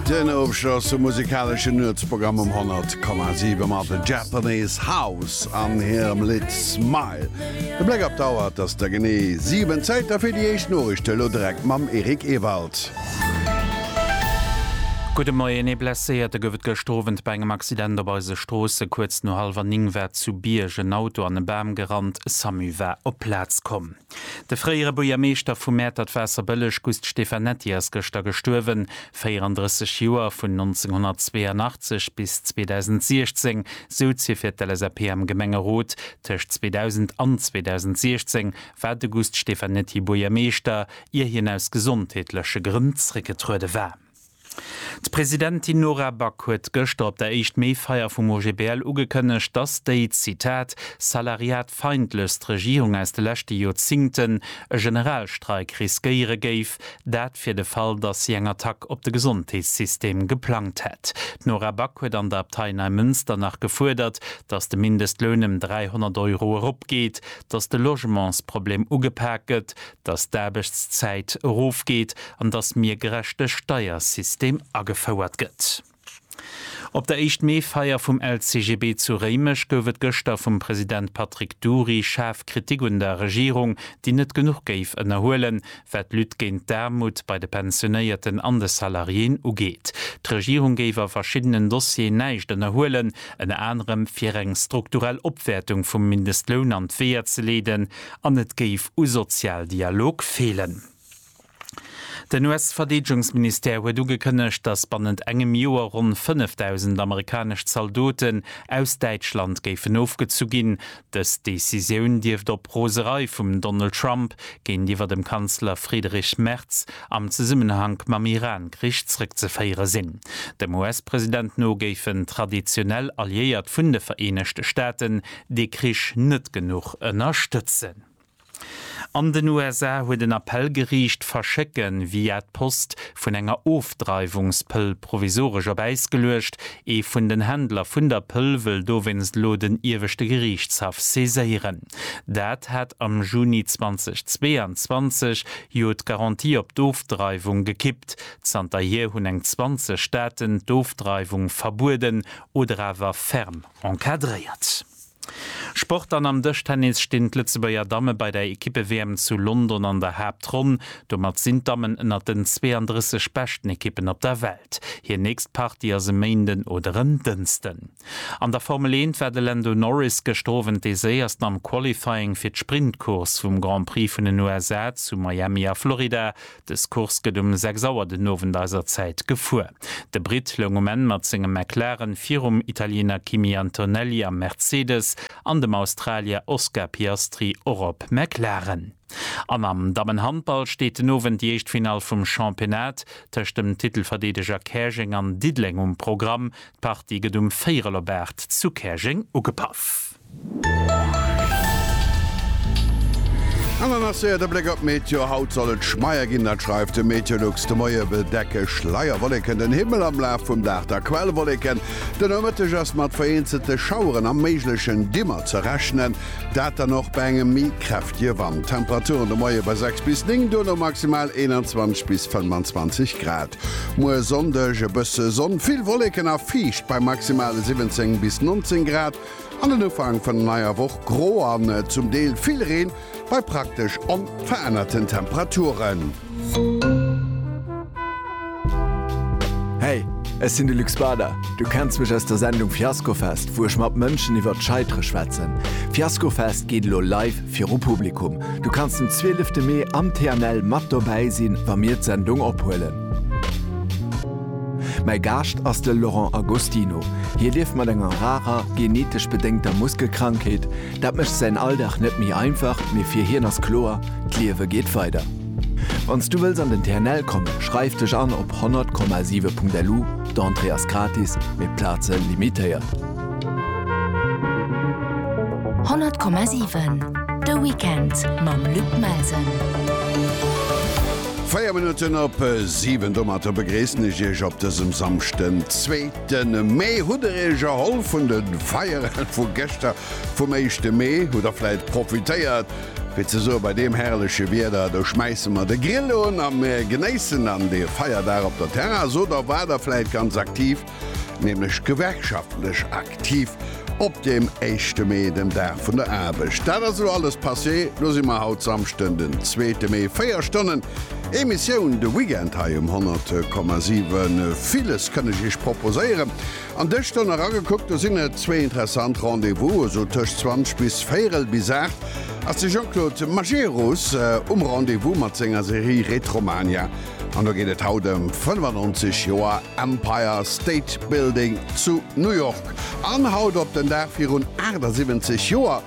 Den Ofschloss vum musikaleschen Nuetsprogramm um 100,7 mat The Japanese House an hirem Lidd Smile. De Bléck op d'Auer, et ass der genee 7, Zäit da fir déi éischt Noriichten, elo direkt mam Eric Ewald. Gudde Moien. Ee Blesséierte gouf et gëschter Owend bei engem Accident op eise Stroossen. Kuerz no hallwer 9 war zu Bierg en Auto an e Bam gerannt. Samu war op d'Plaz komm. De fréiere Buergermeeschter vu Mäertert-Waasserbëlleg Gust Stefanetti ass gëschter gestuerwen. 34 Joer, vun 1982 bis 2016 souz hie fir d'LSAP am Gemengerot. Tëscht 2000 an 2016 war de Gust Stefanetti Buergermeeschter, ier hien aus gesondheetleche Grënn zréckgetruede war. D'Presidentin Nora Back huet gëschter op der Éischt Mee-Feier vum OGBL ugekënnegt, dass déi, Zitat, salariatfeindlechst Regierung aus de leschte Joerzingten e Generalstreik riskéiere géif, dat fir de Fall, dass si eng Attack op de Gesondheetssystem geplangt hätt. D'Nora Back huet an der Abtei Neimënster nach gefuerdert, dass de Mindestloun ëm 300 Euro eropgeet, dass de Logementsproblem ugepak gëtt, dass d'Aarbechtszäit erofgeet an dass mir gerechte Steiersystem agefouert gëtt. Op der Éischt-Mee-Feier vum LCGB zu Réimech gouf et gëschter vum President Patrick Dury schaarf Kritik un der Regierung, déi net genuch géif ënnerhuelen, wat d'Lutte géint d'Aarmut bei de Pensionéierten an de Salariéen ugeet. D'Regierung géif a verschiddenen Dossieren näischt ënnerhuelen, ënner anerem fir eng strukturell Opwäertung vum Mindestloun an d'Weeër ze leeden, an et géif u Sozialdialog feelen. Den US-Verdeedegungsministère huet ugekënnegt, datt bannent engem Joer ronn 5.000 amerikanesch Zaldoten aus Däitschland géifen ofgezu ginn. Dës Decisioun dierft op Roserei vum Donald Trump géintiwwer dem Kanzler Friedrich Merz am Zesummenhank mam Iran-Krich zrëckzeféiere sinn. Dem US-President no géifen traditionell Alliéiert vun de Vereenegte Staaten dee Krich net genuch ënnerstëtzen. An den USA huet en Appellgeriicht d'Verschécke via d'Post vun enger Ofdreiwungspëll provisoresch op Äis geluecht. Ee vun den Händler vun der Pëll wëll dowéinst elo den ieweschte Geriichtshaff saiséieren. Dat hat am Juni 2022 jo d'Garantie op d'Ofdreiwung gekippt. Zanterhier hunn eng 20 Staaten d'Ofdreiwung verbueden oder awer ferm Encadréiert. Sport An am Dëschtennis stinn d'Lëtzebuerger Damme bei der Ekippe-WM zu London an der Haaptronn. Domat sinn d'Dammen ënnert den 32 beschten Ekippen op der Welt. Hir nächst Partie ass e Méinden oder en Dënsten. An der Formel 1 war de Lando Norris gëschter Owend dee Séiersten am Qualifying fir d'Sprint-Course vum Grand Prix vun den USA zu Miami a Florida Dës Course gëtt um 6 Auer den Owend eiser Zäit gefuer. De Britt loung um Enn mat sengem McLaren virum Italiener Kimi Antonelli am Mercedes an dem Australier Oscar Piastri och op McLaren. An am Dammenhandball steet den Owend déi éischt Finall vum Championnat tëscht dem Titelverdeedeger Käerjeng an Diddeleng um Programm. D'Partie gëtt um Véierel op 8 zu Käerjeng ugepaff. An dann ass séier de Bléck op d'Meteo. Haut soll et schmeier ginn, dat schreift de Meteolux. De Moie bedecke Schleierwolleken den Himmel, am Laf vum Dag da Quellwolleken. Den Nomëtteg ass mat vereenzelte Schaueren a méiglechen Dimmer ze rechnen, dat dann och bei engem méi kräftege Wand. Temperaturen de Moie bei 6 bis 9, dono maximal 21 bis 25 Grad. Muer Sonndeg e bësse Sonn, vill Wolleken a fiicht bei maximale 17 bis 19 Grad. An den Ufank vun der neier Woch gro an zum Deel vill Reen bei praktesch onverännerten Temperaturen. Hey, ech sinn de Luc Spader. Du kenns mech aus der Sendung Fiaskofest, wou ech mat Mënschen iwwer d'Scheitere schwätzen. Fiaskofest geet elo live viru Publikum. Du kanns den 12 Mee am TNL mat dobäi sinn, wa mir d'Sendung ophuelen. Mäi Gaascht ass de Laurent Agostino. Hie lieft mat enger rarer, genetesch bedéngter Muskelkrankheet. Dat mécht säin Alldag net méi einfach, mee fir hien ass kloer, D'Liewe geet weider. Wann s du wëlls an den TNL kommen, schreif dech an op 100,7.lu, d'Entrée ass gratis, mee d'Plaze limitéiert. 100,7 De Weekend mam Luc Melsen. Véier Minutten op siwen. Domatter begréissen ech Iech op dësem Samschden, zweeten Mee. Hutt Der Iech erholl vun de Feieren vu gëschter, vum éischte Mee? Hutt Der vläit profitéiert, fir ze soen, bei deem herrleche Wieder, do schmäisse mer de Grill un a mir genéissen dann dee Feierdag op der Terrass? Oder war Der vläit ganz aktiv nämlech gewerkschaftlech aktiv, op deem éischte Mee, dem Dag vun der Aarbecht. Dat ass elo alles passé, lo si mer haut Samschden, den zweete Mee, 4 Stonnen Emissioun de Weekend hei um 100,7. Villes kënn ech iech proposéieren an dës Stonn eragekuckt, do sinn et zwee interessant Rendez-vouse, sou tëscht 20 bis véierel bis 8 ass de Jean-Claude Majerus um Rendez-vous mat senger Serie Retromania. An do geet et haut ëm 95 Joer Empire State Building zu New York. An haut op den Dag virun 78 Joer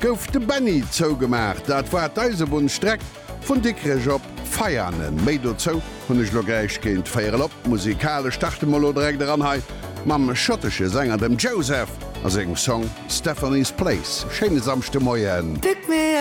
gouf de Benny zougemaach. Dat war d'Eisebunnsstreck vun Dikrech op Veianen. Méi dozou hunn ech elo gläich géint véier el op d'Musikal. Ech starte mol elo direkt eran hei mam schottesche Sänger, dem Joseph a sengem Song Stephanie's Place. Schéine Samschdemoien.